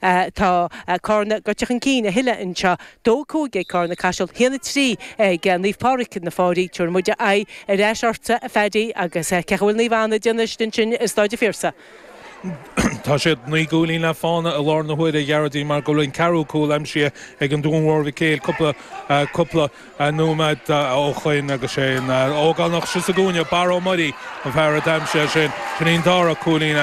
Tá Carna gaibhte chun cinn a thuilleadh anseo. Dó a cúig ag Carna Caiseal. Haon a trí ag Naomh Pádraic na Fairche. Tabharfaidh muid aghaidh ar ais ortsa, a Phaddy, agus cén chaoi a bhfuil Naomh Anna ag déanamh istigh ansin i Staid an Phiarsaigh? Tá siad naoi gcúilín le fána i láthair na huaire, a Ghearóidín, mar go bhfuil an ceathrú cúl aimsithe ag an Dún Mhór Mhic Éil cúpla nóiméad ó shin agus sé an fear ógánach thíos sa gcúinne, Barra Ó Muirí an fear a d'aimsigh é sin. Sin í an dara cúilín,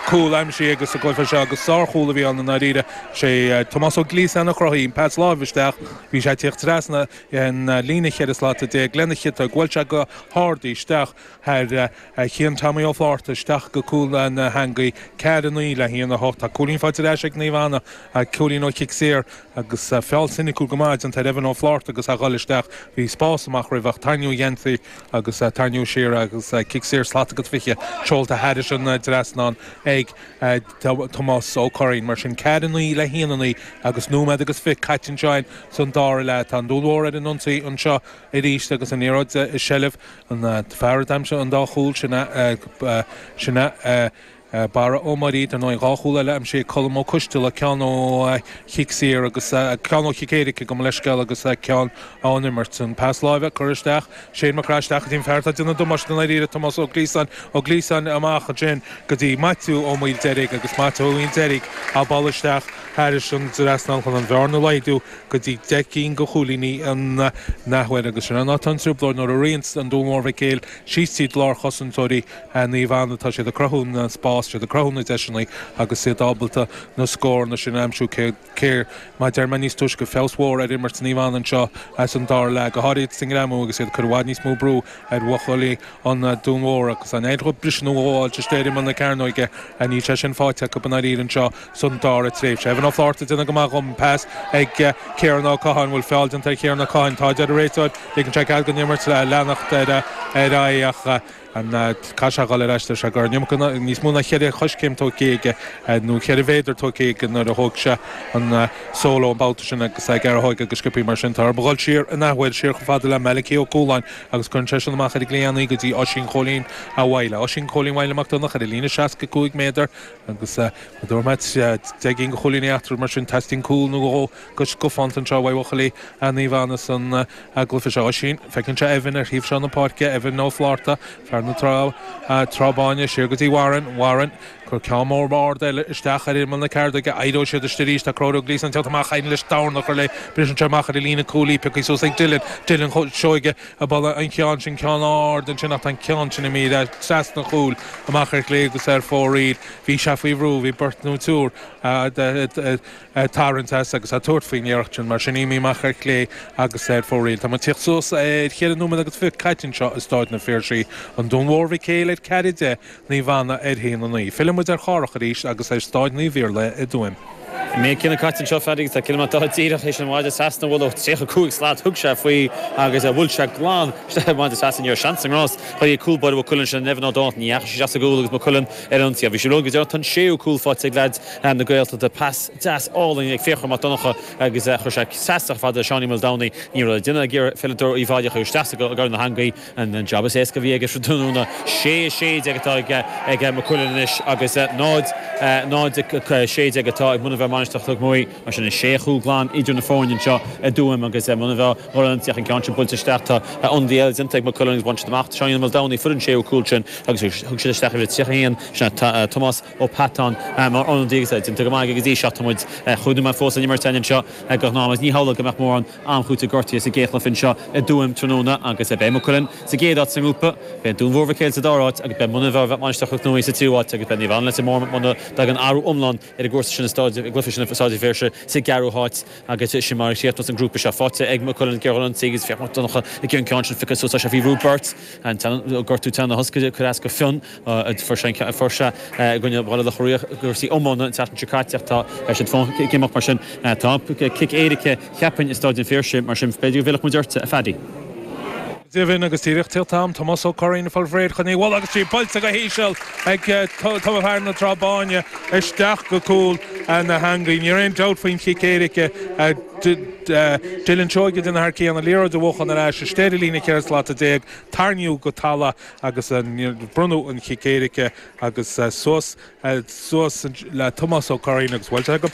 cúl aimsithe aige sa gcluiche seo agus sár chúl a bhí ann i ndáiríre. Sé Tomás Ó Gliasáin a chruthaigh an pas láimh isteach. Bhí sé ag tíocht trasna an líne cheithre slata déag lena chiotóg bhuail sé go hard í isteach thar Chian Tommy Ó Flátharta isteach go cúl na h-eangaí. Ceathair a naoi le haon a hocht. Tá cúilín faighte ar ais ag Naomh Anna, cúilín ó chic saor. agus feall soiniciúil go maith déanta ar Evan Ó Flaithearta agus a dhul isteach bhí spás amach roimhe ach tarraingíodh a gheansaí agus tarraingíodh siar agus cic saor slat agus 20 seolta thairis an trasnán ag Tomás Ó Curraoin mar sin ceathair a naoi le haon a naoi agus nóiméad agus fiche caite anseo in san dára leath tá an Dún Mhór ar an ionsaí anseo arís agus an liathróid i seilbh an fear a d'aimsigh an dá chúl sin a sin a. A Barra Ó Muirí, dar ndóigh, dhá chúl eile a d'aimsigh Colm Ó Coistealla, ceann ó chic saor agus ceann ó chic éirice, gabh mo leithscéal, agus ceann ón imirt. An pas láimhe a cuireadh isteach, Shane McGrath isteach go dtí an fear atá ag déanamh damáiste i ndáiríre, Tomás Ó Gliasáin, Ó Gliasáin amach ansin go dtí Maitiú Ó Maoildeirg agus Maitiú Ó Maoildeirg á bhualadh isteach thairis an trasnán chun an bhearna a laghdú go dtí deich gcinn de chúilíní an athuair agus sin an áit atá an trioblóid nuair a ritheann an Dún Mhór Mhic Éil síos tríd lár chosantóirí Naomh Anna tá siad ag cruthú na spás, tá siad ag cruthú na deiseanna agus iad ábalta na scóranna sin a aimsiú cé, cé, mar a deir mé níos túisce, feabhas mhór ar imirt Naomh Anna anseo san dara leath, go háirithe sa ngreamú agus iad ag cur i bhfad níos mó brú ar bhuachaillí an Dún Mhóir agus an fhéidearthacht briseadh nó ghabháilt isteach ar imeall na cearnóige ach níl sé sin faighte acu i ndáiríre anseo san dara tréimhse. Evan Ó Flaithearta déanamh go maith dhom, pas ag Kieran Ó Catháin, bhfuil feall déanta ar Kieran Ó Catháin, tá a deir an réiteoir, ligeann sé cead don imirt leanacht ar aghaidh ach, Caithfidh sé a dhul ar ais leis a' gcarr? Ní fhaca, níos mó ná cheithre choiscéim tóigthe aige, nó cheithre mhéadar tóigthe aige nuair a thóig sé an solo an babhta sin agus é ag earthóig agus sciobthaí mar sin. Tá orthu a dhul siar an athuair, siar chomh fada le Malachi Ó Cualáin agus cuireann sé sin amach ar a gcliathán go dtí Oisín Chóilín a' Mhaidhle, Oisín Chóilín Mhaidhle Mac Donncha ar a líne seasca cúig méadar agus go dtabharfadh mé deich gcinn de chúilíní eatarthu mar sin. Teastaíonn cúl nó dhó go scafánta anseo uaidh bhuachaillí a' Naomh Anna san. Agallamh, 'Is é Oisín, feiceann sé Evan ar thaobh seo na páirce, Evan Ó Flátharta, fear na trá, Trá Báine, siar go dtí Warren, Warren, cuir ceann mór ard eile isteach ar imeall na cearnóige, éireoidh siad arist arís, tá Conchúr Gleeson teacht amach, d'éirigh leis dorn a chur léi, briseann sé amach ar an líne cúilí, pioctha suas ag Dylan, Dylan Seoige ag bualadh an cheann sin, ceann ard ansin ach tá an ceann sin imithe trasna an chúil, amach ar chlé agus ar fóraoil, bhí sé faoi bhrú, bhí beirt nó triúr, a' tarraint as agus a' tabhairt faoi'n iarracht sin. Mar sin imithe amach ar chlé agus ar fóraoil. Tá muid tíocht suas ar cheithre nóiméad agus fiche caite annseo i Staid an Phiarsaigh, An Dún Mór Mhic Éil ar ceathair a deich, Naomh Anna ar haon a naoi. Filleann muid ar Chárthach arís agus ar Staid Naomh Iarlaithe i dTuaim. Méid céanna caite annseo fear agus tá ciliméadar dá díreach isin mhaide trasna bhuel ó tríocha cúig slat thug sé faoi agus bhuail sé glan isteach i maide trasna. Ní raibh seans sa ngrás. Chuir Uí cúl báire Mhaigh Cuilinn ansin in Evan Ó Donnchadh. Ní dheachaidh sé sa gcúl agus Maigh Cuilinn ar an ionsaí ach bhí sé rugha go deireadh. Tá an séú cúl faighte ag leaid. Fear na Gaeltachta pas deas álainn ag Fiachra Mac Donncha agus chuir sé seasadh fada i Seáinín Ó Maoldomhnaigh. Ní raibh le déanamh ag iarpheileadóir Uíbh Fhailí ach í a chur isteach i gcúl na heangaí. An job is éasca a bhí aige sa tráthnóna. Sé 16 atá ag Maigh Cuilinn anois agus 0-16 atá ag Muine Mheá Mainistreach Chnoc Muaidhe. Mar sin is sé chúl glan idir na foirne anseo i dTuaim agus Muine Mheá. Mura dtiocfaidh an ceann sin buailte isteach tá ionadaí eile déanta ag Maigh Cuilinn agus bhain siad amach Seáinín Ó Maoldomhnaigh, fuair an séú cúl sin agus thug siad isteach uimhir 31 sin é Tomás Ó Peatáin, mar ionadaí agus é déanta go maith aige go dtí seo. Tá muid ag chuimhniú mar fós ar an imirt eile anseo go hnámh agus ní hamhlaidh go mbeadh mórán am cúitimh gortuithe sa gcéadchluiche anseo i dTuaim tráthnóna agus beidh Maigh Cuilinn sa gcéad áit sa ngrúpa, beidh Dún Mór Mhic Éil sa dara háit agus beidh Muine Mheá Mainistreach Chnoc Muaidhe sa tríú háit agus beidh Naomh Anna Leitir Móir muna dtagann athrú iomlán ar an gcúrsa sin i Staid i gcluiche sin i Staid an Phiarsaigh sa gceathrú háit agus sin mar a chríochnós an grúpa seo. Faighte ag Maigh Cuilinn Ger Ghunnan Seagh agus Fiachra Mac Donncha ag an gceann sin feicfidh só tá sé faoi bhrú ó bheirt. An gortú teann a hoscaill cuir as go Fionn. Fuair sé i gcoinne Bhaile Locha Riach i gcúrsaí iomána an tseachtain seo caite ach tá siad fán ag imeacht mar sin. Tá cic éirice, cheapfainn, i Staid an Phiarsaigh mar sin b'fhéidir go bhfillfeadh muid ortsa, a Phaddy. Go deimhin agus díreach tíocht in am Tomás Ó Curraoin fáil faoi réir chun í a bhualadh agus tá sí buailte go híseal ag Tomás fear na Trá Báine isteach go cúl na heangaí. Níl aon dabht faoin gcic éirice a d'fhill an seoige den fhear céanna, liathróid a bhuachan ar ais istigh ar an líne 14 slat, tarraingíodh go talamh agus bronnadh an cic éirice agus suas, suas le Tomás Ó Curraoin agus buailte go.